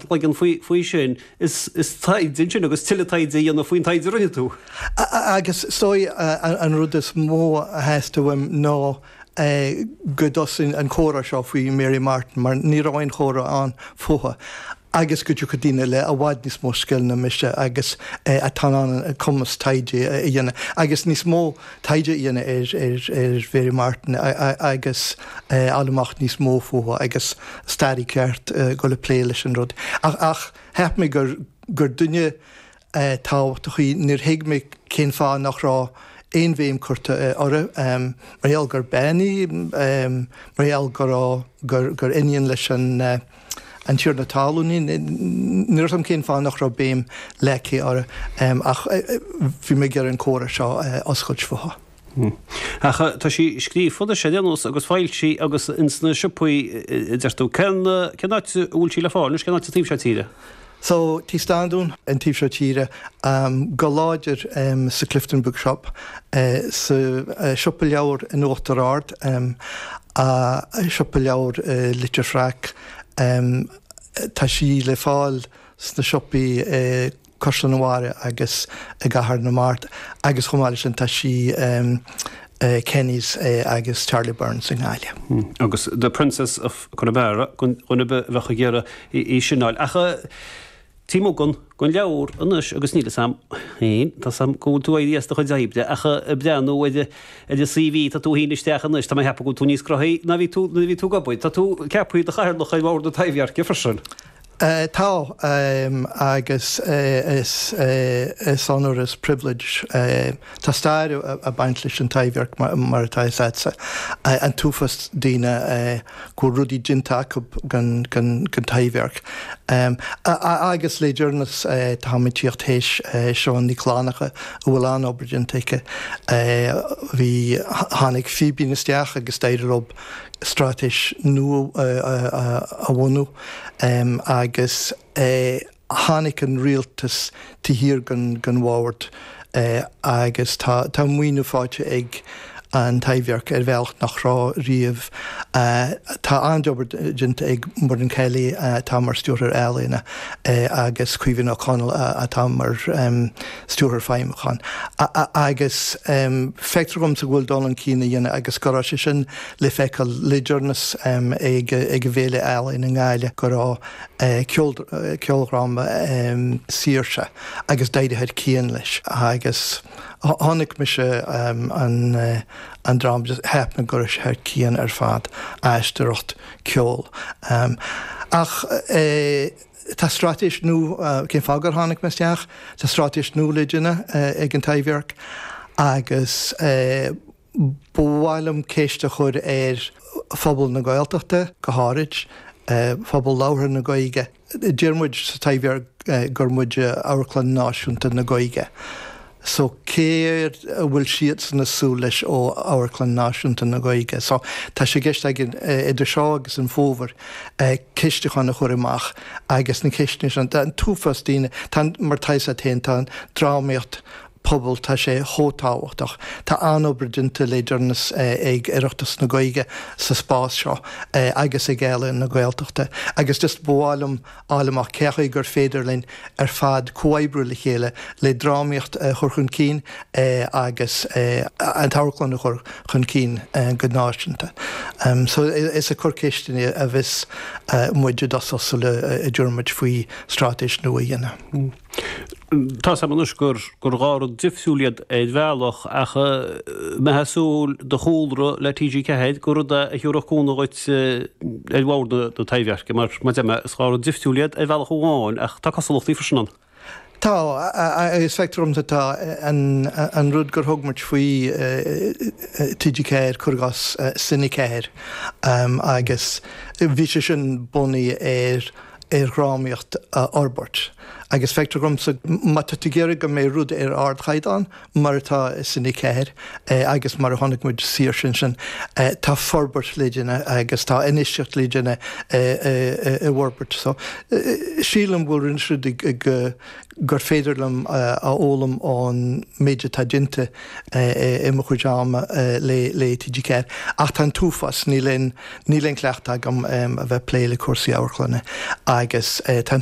leagan faoi sin is taighde ansin agus tuilleadh taighde a dhéanamh faoin taighde a rinne tú. Agus is dóigh an rud is mó a theastaigh uaim ná go dtosódh an comhrá seo faoi Mary Martin, mar ní raibh aon chomhrá ann fúithi, agus go dtiocfadh daoine le i bhfad níos mó scil ná mise agus atá in ann an cumas taighde a dhéanamh agus níos mó taighde a dhéanamh ar Mhary Martin agus a fháil amach níos mó fúithi agus staraí ceart a dhul ag plé leis an rud. Ach cheap mé gur duine tábhachtach a bhí inti. Níor thuig mé cén fáth nach raibh aon bhéim curtha uirthi mar gheall gur bean í, mar gheall gur iníon leis an. An Tiarna Talún í. Níor thuig mé cén fáth nach raibh béim leagtha uirthi ach bhí mé ag iarraidh an comhrá seo a oscailt fúithi. Ach tá sí scríofa leabhar déanta anois agus foilsithe agus ins na siopaí a deir tú. Cén áit a bhfuil sí le fáil anois? Cén áit sa taobh seo tíre? Tá Tigh Standún, an taobh seo tíre, go háirid sa Clifden Bookshop, sa siopa leabhar in Uachtar Ard, siopa leabhar Leitir Fraic, tá sí le fáil sna siopaí i gCaisleán an Bharraigh agus i gCathair na Mart agus chomh maith leis sin tá sí i Kenny's agus Charlie Byrne's i nGaillimh. Agus The Princess of. Conamara, do dhuine a bheadh ag iarraidh í sin a fháil. Ach taobh amuigh den, den leabhar anois agus níl fhios agam, fhéin, tá fhios agam go bhfuil tú ag éirí as do chuid oibre ach ag breathnú ar an CV a chuir tú fhéin isteach anois tá mé ag ceapadh go bhfuil tú níos cruógaí ná nuair a bhí tú ag obair. Tá tú ceaptha i do Chathaoirleach ar bhord na Taibhdheirce freisin. Tá, agus is onóir is pribhléid. Tá stair ag baint leis an Taibhdhearc mar atá fhios agatsa, an t-uafás daoine go bhfuil rudaí déanta acu don Taibhdhearc. Agus le deireanas táim ag tíocht théis Siobhán Nic Fhlannchadha a bhfuil an-obair déanta aici. Bhí, tháinig Fíbín isteach agus d'éirigh leo straitéis nua a bhunú. Agus tháinic an rialtas dá thabhairt dá gcabhair agus tá an maoiniú fáighte ag an Taibhdhearc ar bhealach nach raibh riamh. Tá an-obair déanta ag Muireann Kelly atá mar Stiúrthóir Ealaíona agus Caoimhe Ní Chonaill atá mar Stiúrthóir Feidhmiúcháin agus feictear dhomsa go bhfuil dul chun cinn á dhéanamh agus go raibh sé sin le feiceáil le deireanas ag an bhFéile Ealaíon i nGaillimh go raibh ceoldráma Saoirse agus d'éirigh thar cionn leis agus chonaic mise an dráma agus cheap mé go raibh sé thar cionn ar fad, aisteoireacht, ceol. Ach tá straitéis nua, cén fáth gur tháinig mé isteach, tá straitéis nua le déanamh ag an Taibhdhearc agus. Ba mhaith liom ceist a chur ar phobal na Gaeltachta go háirid, phobal labhartha na Gaeilge. Deireann muid sa Taibhdhearc gur muid Amharclann Náisiúnta na Gaeilge. So céard a bhfuil siadsan ag súil leis ó Amharclann Náisiúnta na Gaeilge? So tá sé i gceist againn idir seo agus an fómhar ceistiúchán a chur amach agus na ceisteanna sin. Tá an t-uafás daoine, tá an, mar tá a fhios agat féin, tá an drámaíocht phobail tá sé chomh tábhachtach. Tá an-obair déanta le deireanas ag Oireachtas na Gaeilge sa spás seo agus ag Ealaín na Gaeltachta agus just ba mhaith liom a fháil amach cén chaoi gur féidir linn ar fad comhoibriú le chéile le drámaíocht a chur chun cinn agus an amharclann a chur chun cinn go náisiúnta. So is ag cur ceisteanna a bheas muid i dtosach sula dtabharfaimid faoi straitéis nua a dhéanamh. Tá's agam anois gur dhá rud difriúil iad ar bhealach ach mé ag ceapadh is dóigh do chúlra le TG4 gur rud é a thiúrfadh cúnamh duit ar bhord na Taibhdheirce mar, mar deir mé, is dhá rud difriúil iad ar bhealach amháin ach tá cosúlachtaí freisin ann. Tá, agus feictear dhomsa tá an rud gur tugadh faoi TG4, cur i gcás Cine 4, agus bhí sé sin bunaithe ar, ar dhrámaíocht a fhorbairt agus feictear dhomsa má tá tú ag iarraidh go mbeidh rud ar ardchaighdeán mar atá sa Cine 4 agus mar a chonaic muid Saoirse ansin tá forbairt le déanamh agus tá infheistíocht le déanamh i bhforbairt so sílim go bhfuil rinne siad go gur féidir liom a fhoghlaim ón méid atá déanta i mo chuid ama le TG4. Ach tá an t-uafás, níl aon chleachtadh agam a bheith ag plé le cúrsaí amharclainne agus tá an.